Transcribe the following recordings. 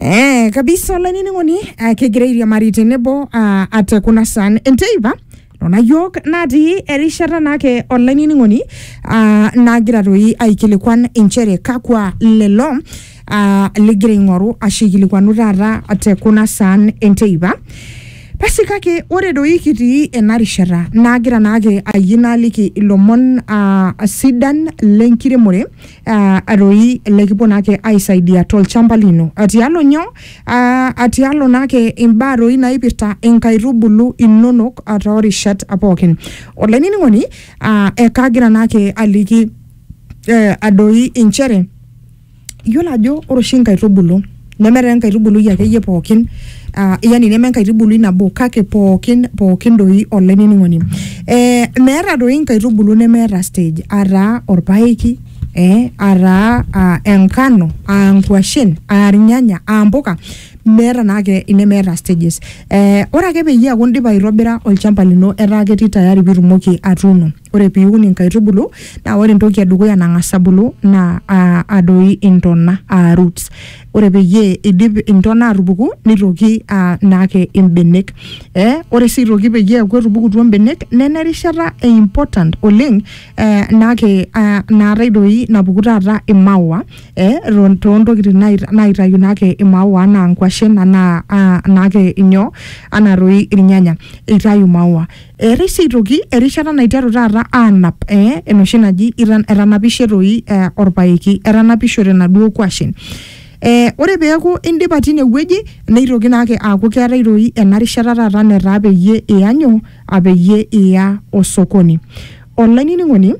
Eh, kabisa olainining'oni ah, kegira airiamari tenebo ah, ate kuna san enteipa nona yiok natii erishata naake olainining'oni ah, nagira toi aikilikuan inchere kakwa lelo ah, ligira aing'oru ashu aikilikuanu taata te kuna san enteipa basi kake ore doi kitii ena rishata nagira naake ayie naaliki ilomon ah, sidan lenkiremore ah, aroi lekipuo naake aisaidia tolchamba lino atialo nyo ah, atialo naake imbaa roi naipirta inkaitubulu inonok ah, toorishat pookin olainining'oni ah, ekagira naake aliki eh, adoi inchere yiolo ajo ore oshi inkaitubulu neme taa enkaitubului akeyie pookin uh, yani neme enkaitubului nabo kake pookin pookin doi olainining'oni eh, meeta doi inkaitubulu nemeeta stage ataa orpaeki eh, ataa uh, enkano aa nkuashen aa irnyanya aa mpuka meeta naake inemeeta stages eh, ore ake peyie eaku indipa aitobira olchamba lino etaa ketii tayari pitumoki atuuno ore piun inkaitubulu naa ore entoki edukuya nang'as abulu naa uh adoi intona aa roots ore peyie idip intona atupuku nitoki uh naake imbenek eh ore sii aitoki peyie eeku etupukutuo imbenek nena erishata e important oleng eh naake uh naatae doi napuku taata imaua eh eton tontokitin nai naitayu naake imaua anaa inkuashen anaa uh naake inyoo anaa toi irnyanya eitayu imaua. Eetae sii aitoki erishata naiteru taata aanap eh, enoshi naji itan- etanapishe toi eh, orpaeki etanapishote naduo kwashen Eh, ore peeku indipa tine wueji neitoki naake aaku keetae toi ena rishata taata netaa peyie iya nyoo apeyie iya osokoni olainining'oni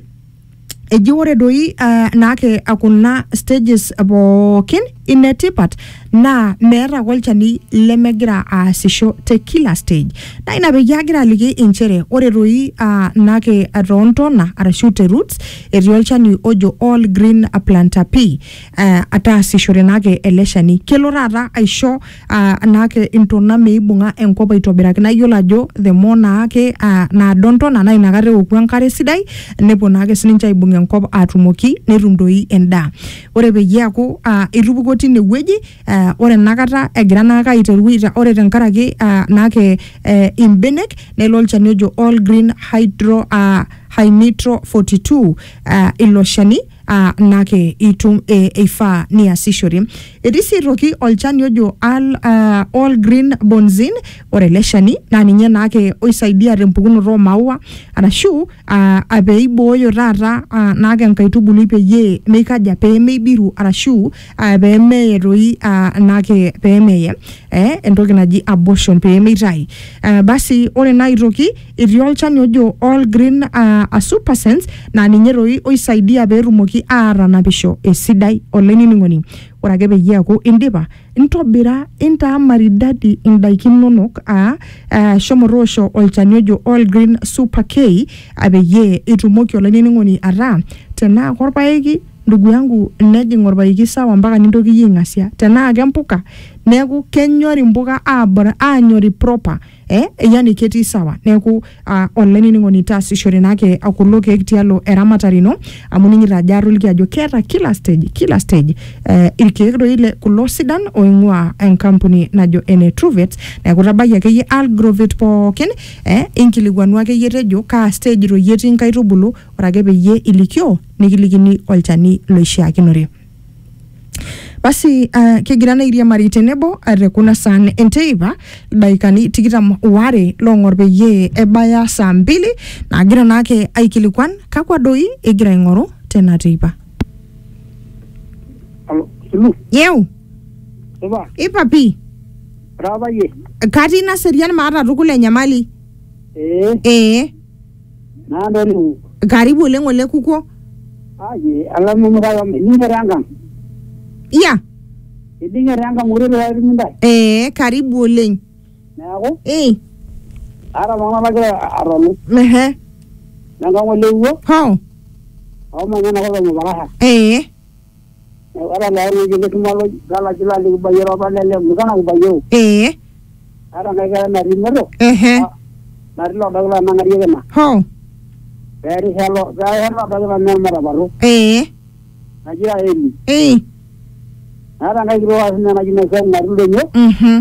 Eji ore doi uh, naake kuna stages pookin inetipat naa meeta ake olchani lemegira aasisho te kila stage. Naa ina peyie agira aliki inchere ore doi uh, naake toontona arashu te roots etii olchani ojo all green planter pea. eh, ataasishore naake ele shani kelo taata aisho ah, naake intona meibung'a enkop aitobiraki naa iyiolo ajo the more naake ah, naado ntona naa inakata eoku enkare sidai nepuo naake sininche aibung enkop atumoki netum doi endaa ore peyie eaku ah, etupukuo tine wueji ah, ore enakata egira naake aiteru aita- ore tenkaraki ah, naake eh, imbenek nelo olchani ojo all green hydro ah, hynitro 42 ah, ilo shani aa nake itum e, eifaa niasishore. Etii sii aitoki olchani ojo al, uh, all green bonzin. Ore ele shani naa ninye naake oisaidia tempukunoto oo maua arashu uh, pee eibooyo taata uh, naake enkaitubului peyie meikaja pee meibiru arashu uh, pee meye toi uh, naake pee meye eh, entoki naji abortion pee meitayu. Uh, basi ore naa aitoki. etii olchani ojo all green uh, a super sense naa ninye toi oisaidia peetumoki aatanapisho esidai olainining'oni ore ake peyie eaku indipa ntobira intaa maridadi indaiki inonok aa uh, shomo toosho olchani ojo all green super k ah, peyie itumoki olainining'oni ataa tenaa korpaeki ndugu yangu nejing orpaeki sawa mpaka nintoki iyie aing'asia tenaa kempuka neeku kenyori impuka abor anyori proper eh, yani ketii sawa neeku ah, olainining'oni taasishore naake kulo keek tialo eramatare ino amu ning'ita ajo atoliki ajo keeta kila stage kila stage eh, irkeek doi le kulo sidan oing'ua enkampuni najo ene Truvet neeku tabayie akeyie Algrovet pookin eh, inkilikuanu akeyie tejo kaa stage doi etii nkaitubulu ore ake peyie ilikioo nikilikini olchani loishiakinore. Basi uh, kigira naa airiamari tenebo uh, te kuna saan enteipa ildaikani tikitam waare loong'or peyie ebaya saa mbili naagira naake aikilikuan kakwa doi egira aing'oru tena teipa. Alo, Sulu, Yeu, supa, ipa pii, ora apa yie? katii naserian maata tukul enyamali. Ee, Ee, Naado ninye. karibu oleng ole kukuo Aji alamu mukaya ninye tenkang. ya Iding'e tenkang ure pee etumi ntae. ee karibu oleng Neeku ee aata iltung'ana lagira atolu ehe lenkang olewuo hoo omanya enakop e Mupakasha. ee Ore naa ewueji nikimal galaki laa likibayie apa lele mukana kibayie ee ata enkae kerai natii moto ehe natii loodo kila nang'arie kina hoo peerisha lo peerisha loodo kila naa matapatu ee naji Raeli ee naata enkae kitok ake sinye naji Naisau natii ildonyo mhm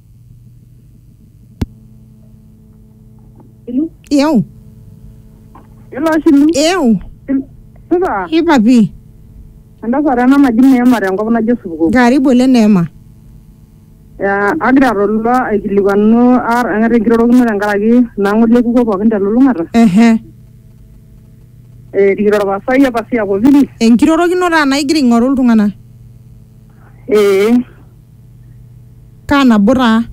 Eu? Ilo ashilu. Eu? Supa. Hii papi. Entasat ena naji Neema tenkop naji Osupuko. Karibu ole Neema. Ya, agira atolu aikilikuanu ar eng'ata enkirorokino tenkaraki nang'ole ekuko pookin telulung'ata. Ehe. Eh, rikito orpasai apa si akopiri. Enkirorokino taa naigira aing'oru iltung'anak. Eh, Kaa nabo taa?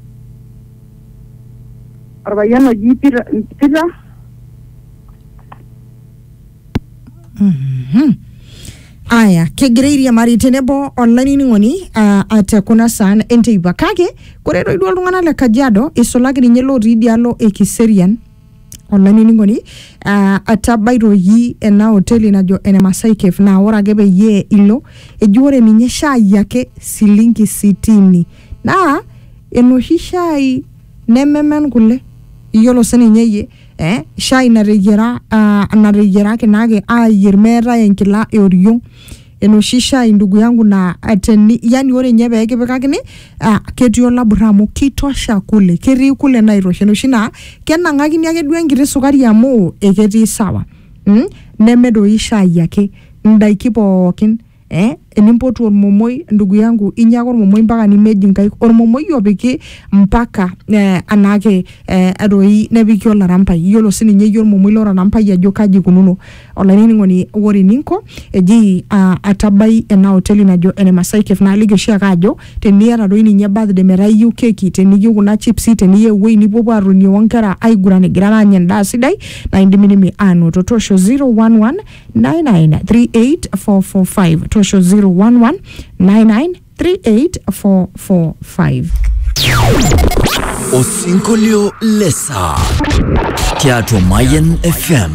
Orpayian oji Peter, Peter Mhm. Aya, kegira airiamari tenebo olainining'oni ah, ah, te kuna saan enteipa kake kore toi duo iltung'anak le Kajiado isulaki ninye lotii idialo e Kiserian olainining'oni uh, atabaitoki ena hoteli najo ene Masai Cave naa ore ake peyie ilo eji ore ninye shai ake silingi sitini naa enoshi shai nememen kule iyiolo sininye iyie eh, shai nateyiera uh, nateyierakinaki ayierr meetae enkila eoriong enoshi shai ndugu yangu na eh, teni, yani ore nye pee kipikakini ah, ketii olabura amu kitosha kule ketii kule naitosha enoshi naa kenang'akini ake duo enkiti sukari amu eketii sawa mm? neme doi shai ake ndaiki pookin eh? enimpotu ormomoi ndugu yangu inya ake ormomoi mpaka nimeji nkaik ormomoi opiki mpaka eh, anaake eh, doi nepiki olarampai yiolo sininye iyie ormomoi lorarampai ajo kaji ikununo olainining'oni ore eninko eji uh, atabai ena hoteli najo ene Masai Cave naaliki oshiake ajo teniata doi ninye birthday metaa iyieu keki teniyieu kuna chipsi teniyieu ewuei nipuopuo atonie onkera aiguran igirara aanya endaa sidai naa indimidimi aanoto toosho 011 9938445 toosho 011 9938445 Osinkolio le saa tiatua Mayan FM.